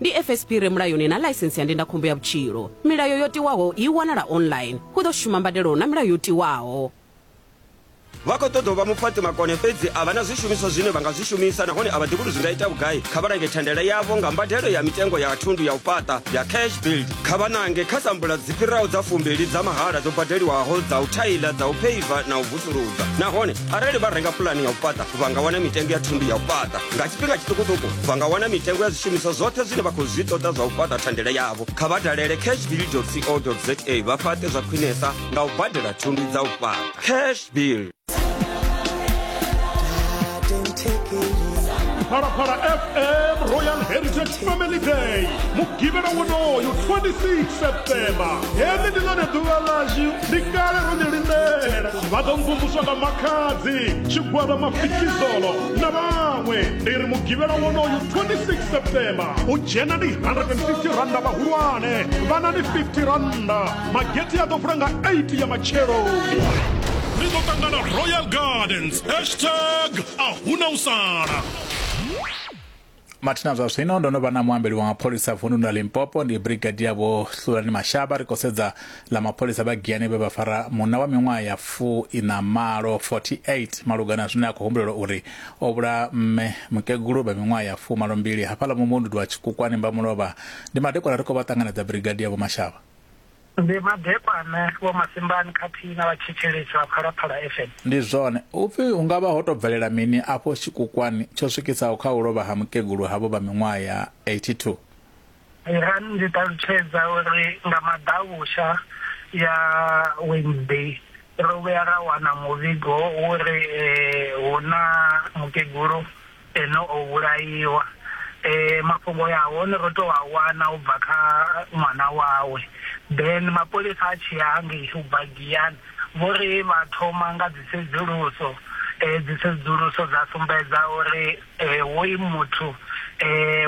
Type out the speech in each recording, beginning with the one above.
ndi fsp re mulayoni na ḽaisensi ya ndindakhombo ya vhutshilo milayo yo tiwaho i wanala online hu ḓo shuma mbadelo na milayo yo tiwaho vha khou ṱoḓa u vha mufhaṱi makone fhedzi a vha na zwishumiswa zwine vha nga zwi shumisa nahone a vha ḓivhi uri zwi nga ita vhugai kha vha lange thandela yavho nga mbadelo ya mitengo ya thundu ya u fhaṱa ya cash build kha vha nange kha sambula dzi fhiraho dza fumbili dza mahala dzo badeliwaho dza u thaila dza u pheiva na u vusuludza nahone arali vha renga pulani ya u fhaṱa vha nga wana mitengo ya thundu ya u fhaṱa nga tshifhinga tshiṱukuṱuku vha nga wana mitengo ya zwishumiswa zwoṱhe zwine vha khou zwi ṱoḓa zwa u fhaṱa thandela yavho kha vha dalele cash bill co za vha fhaṱe zwa khwinesa nga u badela thundu dza u fhaṱa cash bill Phalaphala FM Royal Heritage family day mugivhela wonoyo 26 september heḽi ndi ḽone ḓuvha ḽashu ndi kale ro ḽi lindela vha ḓo mvumvuswa nga makhadzi tshigwada mafikizolo na vhaṅwe ndi ri mugivhela wonoyo 26 september u dzhena ndi 150 randa vhahulwane vhana ndi 50 randa mageti a ḓo vula nga 8 ya matsheloni ri ḓo ṱangana royal gardens hashtag a huna u sala Mathina zwa zwino ndo no vha na muambeli wa mapholisa vunḓuni ḽa Limpopo ndi Brigadier Vho Hlulani Mashaba ri khou sedza ḽa mapholisa vha Giyani vhe vha fara munna wa miṅwaha ya fu ina malo 48 malugana zwine a khou humbulelwa uri o vhula mme mukegulu vha miṅwaha ya fu malo mbili hafhaḽa muvhunduni wa Tshikukwani Mbamulovha ndi madekwana ri khou vha ṱanganedza Brigadier Vho Mashaba Ndi madekwana, Vho Masimbani khathihi na vha Tshetshelesi vha Phalaphala FM. Ndi zwone. Hu pfi hu nga vha ho tou bvelela mini afho tshikukwani tsho swikisaho kha u lovha ha mukegulu havho vha miṅwaha ya 82? Irani ndi ṱalutshedza uri nga maḓavhusha ya Wednesday ro vhuya ra wana muvhigo wo ri hu na mukegulu Eno o vhulaiwa. Ee, mafhungo a hone ro tou a wana u bva kha ṅwana wawe. Ben, mapholisa a tshi ya hangei u bva Giyani, vho ri vha thoma nga dzisedzuluso. Dzisedzuluso dza sumbedza uri hoyu muthu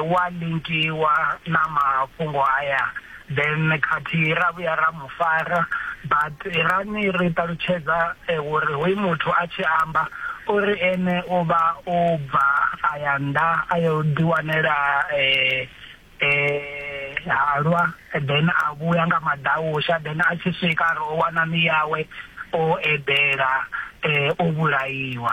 u a linkiwa na mafhungo aya. Then khathihi ra vhuya ra mu fara but irani ri ṱalutshedza uri hoyu muthu a tshi amba o ri ene o vha o bva a ya nnḓa a yo ḓiwanela halwa then a vhuya nga maḓausha then a tshi swika a ri o wana miyawe o eḓela o vhulaiwa.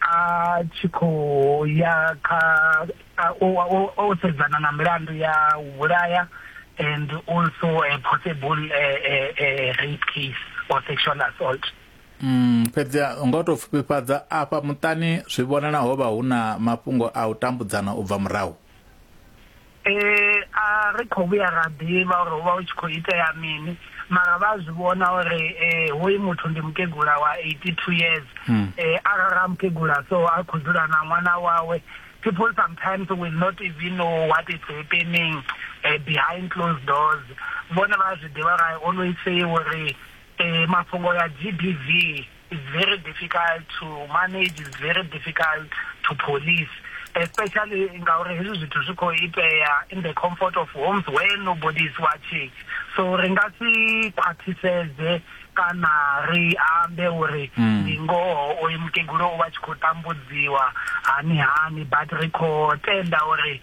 a tshi khou ya kha o sedzana na milandu ya u vhulaya and also a possible a, a, a rape case or sexual assault Mm, fhedzi nga u tou pfufhifhadza afha muṱani zwi vhonala ho vha hu na mafhungo a u tambudzana u bva murahu Ee, a ri khou vhuya ra ḓivha uri hu vha hu tshi khou itea mini mara vha a zwi vhona uri um hoyu muthu ndi mukegula wa eighty two years um arali a mukegula so a khou dzula na ṅwana wawe people sometimes will not even know what is happening um behind closed doors vhone vha a zwi ḓivha ra always say uri um mafhungo ya g b v is very difficult to manage is very difficult to police especially ngauri hezwi zwithu zwi khou itea in the comfort of homes where nobody is watching so ri nga si khwaṱhisedze kana ri ambe uri hmm. ndi ngoho oyo mukegulu o vha tshi khou tambudziwa hani hani but ri khou tenda uri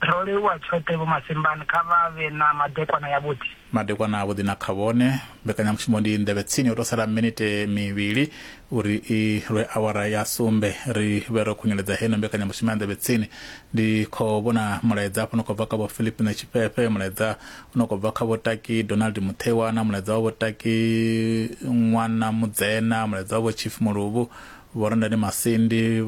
Ro livhuwa tshoṱhe Vho Masimbani, kha vha vhe na madekwana yavhuḓi. Madekwana avhuḓi na kha vhone. Mbekanyamushumo ndi Nḓevhe Tsini, ho tou sala minite mivhili uri i lwe awara ya sumbe. Ri vhe ro khunyeledza heino mbekanyamushumo ya Nḓevhe Tsini. Ndi khou vhona mulaedza hafha u no khou bva kha Vho Philippine Tshifhefe, mulaedza u no khou bva kha Vho Taki Donald Mutheiwa na mulaedza wa Vho Taki Ṅwana Mudzena, mulaedza wa Vho Chief Muluvhu, Vho Rendani Masindi,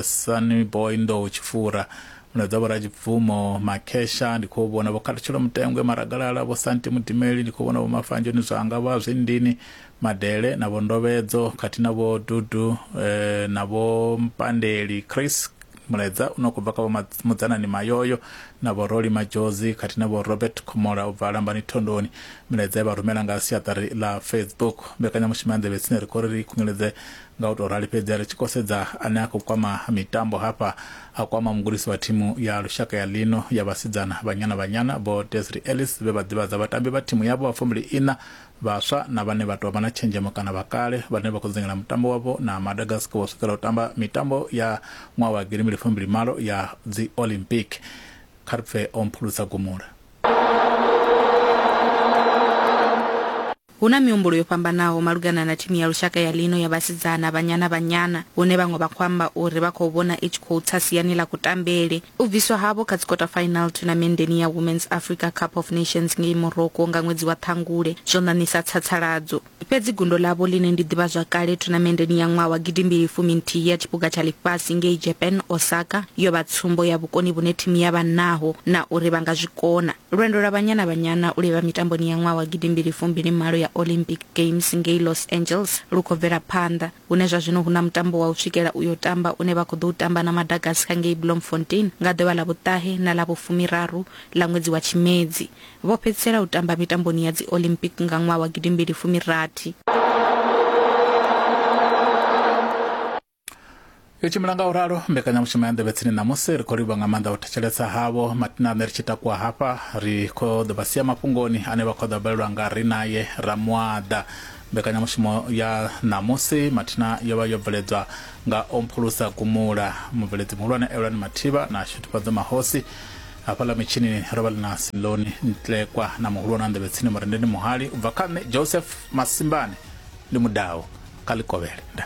Sunny Boy Nḓou Tshifura, mulaedza vho rajibvumo makhesha ndi khou vhona vho khathutshelo mutengwe maragalala vho santi mudimeli ndi khou vhona vho mafanjoni zwanga vha zwindini madele na vho ndovhedzo khathihi na vho dudu eh, na vho mpandeli chris mulaedza une khou bva kha vho Ma- mudzanani mayoyo na vho roli majozi khathihi na vho robert khomola u bva lambani thondoni milaedza ye vha rumela nga siaṱari ḽa facebook mbekanyamushumo ya nḓevhe tsine ri khou ri ri khunyeledze Nga u tou rali fhedzi ri tshi kosedza ane a khou kwama mitambo hafha, a kwama mugudisi wa thimu ya lushaka ya ḽino ya vhasidzana Banyana Banyana, Vho Desri Ellis vhe vha ḓivhadza vhatambi vha thimu yavho vha fumbiliiṋa vhaswa na vhane vha tou vha na tshenzhemo kana vha kale vhane vha khou dzingela mutambo wavho na Madagascar vho swikela u tamba mitambo ya ṅwaha wa gidi mbili fumbili malo ya dzi Olympic. Kha ri pfe o mphulusa gumula. Hu na mihumbulo yo fhambanaho malugana na thimu ya lushaka ya ḽino ya vhasidzana, Banyana Banyana, hune vhaṅwe vha khou amba uri vha khou vhona i tshi khou tsa siani ḽa kutambele. U bviswa havho kha dzikota final thunamendeni ya Women's Africa Cup of Nations ngei Morocco nga ṅwedzi wa Ṱhangule zwo ṋaṋisa tsatsaladzo. Fhedzi gundo ḽavho ḽine ndi ḓivhazwakale thunamendeni ya ṅwaha wa gidimbili fumi nthihi ya Tshiphuga tsha Ḽifhasi ngei Japan, Osaka, yo vha tsumbo ya vhukoni vhune thimu ya vha naho na uri vha nga zwi kona. Lwendo lwa Banyana Banyana u livha mitamboni ya ṅwaha wa gidimbili fumbili malo ya Olympic Games ngei Los Angeles lu khou bvela phanḓa, hune zwa zwino hu na mutambo wa u swikela u yo tamba une vha khou ḓou tamba na Madagascar ngei Bloemfontein nga ḓuvha ḽa vhuṱahe na ḽa vhufumiraru ḽa ṅwedzi wa Tshimedzi. Vho fhedzisela u tamba mitamboni ya dzi Olympic nga ṅwaha wa gidimbili fumirathi. yo tshimbila nga u ralo mbekanyamushumo ya nḓevhe tsini ṋamusi ri khou livha nga maanḓa u thetshelesa havho matina ane ri tshi takuwa hafha ri khou ḓo vha sia mafhungoni ane vha khou ḓa balelwa nga ri naye ramuaḓa mbekanyamushumo ya ṋamusi mathina yo vha yo bveledzwa nga omphulusa gumula mubveledzi muhulwane elwani mathivha na shutufhadzo mahosi hafhaḽa mitshinini ro vha ḽi na siloni ntlekwa na muhulwane wa nḓevhe tsini murendeni muhali u bva kha nṋe joseph masimbane ndi mudau kha ḽikovhele nda